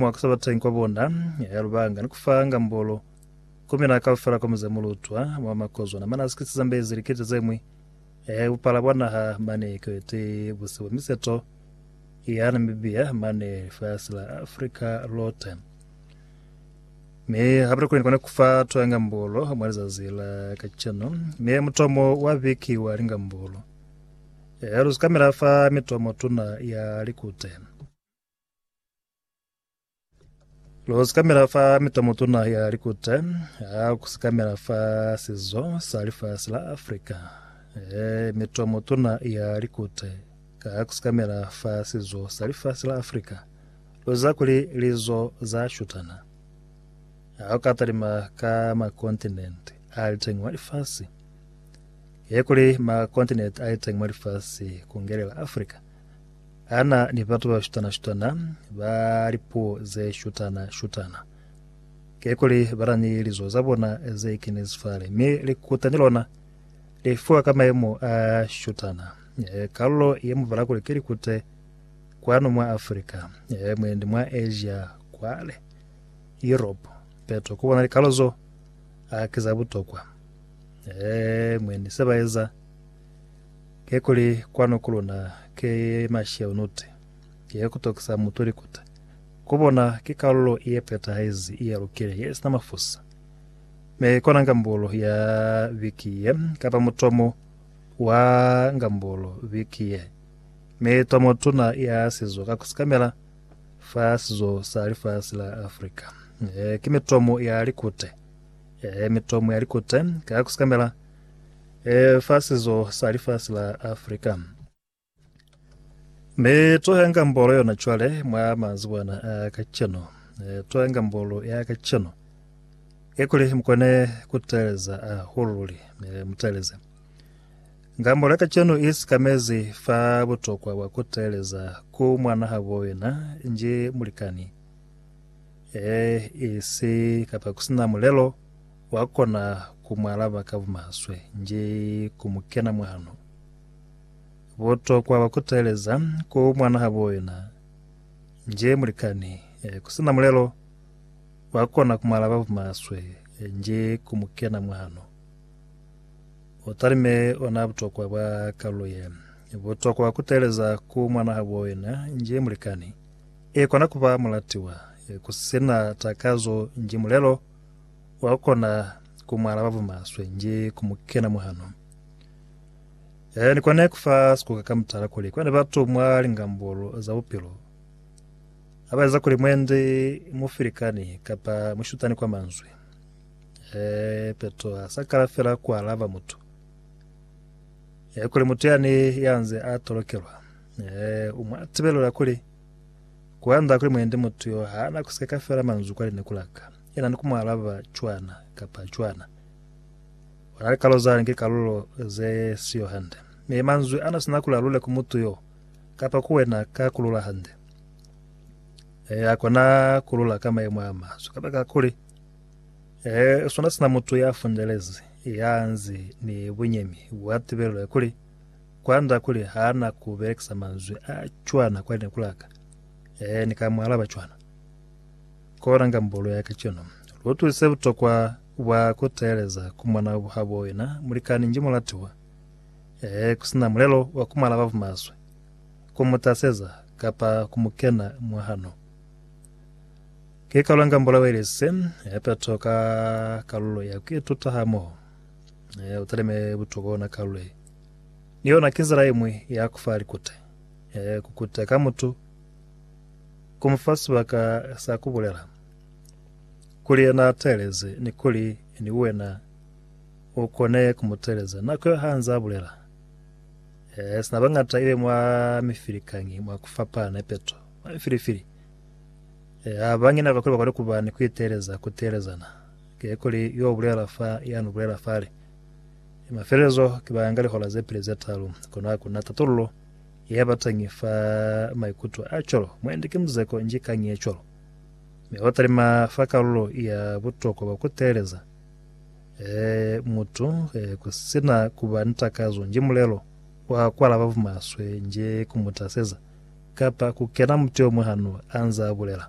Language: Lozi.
Mwa ku sa batangi kwa bona, ya lubanga ni ku fa ngambolo ku mina kaufela kwa muze mulutwa mwa makozwana mane a sikisi zambezi likete ze ñwi, bupala bwa naha mane kwete buse bwa miseto ya Namibia mane lifasi la Afrika lote. Mi hape kuli kone ku fa twa ngambolo mwa lizazi la kaceno, mi mutomo wa biki wa lingambolo ya luzi kamela fa mitomo tuna ya likute. Lu sikamela fa mitomotuna ya likute ha ku sikamela fa sizo sa lifasi la Afrika. E, mitomotuna ya likute ka ku sikamela fa sizo sa lifasi la Afrika. Lu za kuli lizo za shutana. Ha u ka talima ka makontinenti a liteng mwa lifasi, ye kuli makontinenti a liteng mwa lifasi ku ngelela Afrika, Ana ni batu ba shutana-shutana, ba lipuo ze shutana-shutana. Kikuli bana ni lizo za bona ze kinezi fale, mi likuta ni lona li fiwa ka mayemo a shutana. Kalulo ye mubala kuli ki likute kwanu mwa Afrika, mwendi mwa Asia kwale, Europe, peto ku bona likalulo zo a ki za butokwa. Mwendi se ba eza Kekuli kwanu ku luna ki mashau nute, ye kutokisa mutu likuta. Ku bona ki kalulo ye petahezi ye lukile ye sina mafusa. Mi kona ngambulu ya viki ye, kapa mutomo wa ngambulu viki ye, mi tomo tuna ya sizo ka kusikamela fa sizo sa lifasi la Afrika, ki mitomo ya likute, mitomo ya likute ka kusikamela E, fa sizo sa lifasi la Afrika. Mi tuhenga mbolo yona cwale mwa mazibwana a kacenu. E, tuhenga mbolo ya kacenu. Ekuli mukone kuteleza ahulu luli. E, muteleze. Nga mbolo ya kacenu i sikamezi fa butokwa bwa kuteleza ku mwana habo yena nji mulikani. E, isi kapa kusina mulelo. Wa kona ku mu alaba ka bumaswe nji ku mu kena mwahano. Butokwa bwa ku teeleza ku mwanahabo yena nji mulikani ku si na mulelo, wa kona ku mu alaba bumaswe nji ku mu kena mwahano. U talime ona butokwa bwa kalulo ye. Butokwa bwa ku teeleza ku mwanahabo yena nji mulikani i kona ku ba mulatiwa ku si na takazo nji mulelo Wa kona ku mu alaba bumaswe nji ku mu kena muhano. Yaya ni kone ku fa sikuka ka mutala kuli kwande batu mwa lingambulu za bupilo ha ba eza kuli mwendi mufilikani kapa mushutani kwa manzwi. Ee, Petro ha sa kala fela ku alaba mutu. Ee, kuli mutu yani ya nze a tolokelwa. Ee, u mwa tibelela kuli kuanda kuli mwendi mutu yo ha na ku sikeka fela manzwi kwa lineku la ka. Yena ni ku mu alaba cwana kapa cwana. Ona li kalulo zani ki kalulo ze siyo hande. Mi manzwi ana sina kuli alule ku mutu yo, kapa ku wena ka kulula hande. Ee, akona kulula ka maimo a maswe, kabaka kuli, Ee, sona sina mutu ya fundelezi, ya nzi ni bunyemi bwa tibelelo ya kuli, kwanda kuli hana ku belekisa manzwi a cwana kwa lineku laka, ee, ni ka mu alaba cwana. Kolanga mbolo ya kacenu. Lu utwisize butokwa bwa ku teeleza ku mona habo wena mulikani nji mulatiwa. Ee, ku si na mulelo wa ku mu alaba bumaswe, ku mu taseza, kapa ku mu kena mwa hano. Ki kolanga mbolo yeo ilisize ya peto ka kalulo ya ku ituta hamoho. Ee, u talime butokwa ona kalulo ye. Ni yona ki nzila iñwi ya ku fa likute. Ee, ku kute ka mutu. ku mu fa sibaka sa ku bulela kuli yena a teeleze ni kuli ni wena u kone ku mu teeleza nako yo ha nze a bulela. Eh, sina bañata ibe mwa mifilikañi mwa ku fapana ipeto mwa mifilifili. Eh, ha ba ngina kakuli ba kone ku ba ni ku iteeleza ku teelezana. Ke kuli yo bulela fa ya nu bulela fale. Mafelelezo ki ba nga lihola ze pili ze talu, kono ha ku na tatullo Ya batangi fa maikuto a cwalo, mu andike muzeko nji kañi ye cwalo, mi wa talima fa kalulo ya butokwa bwa ku teeleza e mutu e ku si na ku ba ni takazo nji mulelo wa ku alaba bumaswe nji ku mu taseza kapa ku kena muti o mwa hano a nzaa bulela.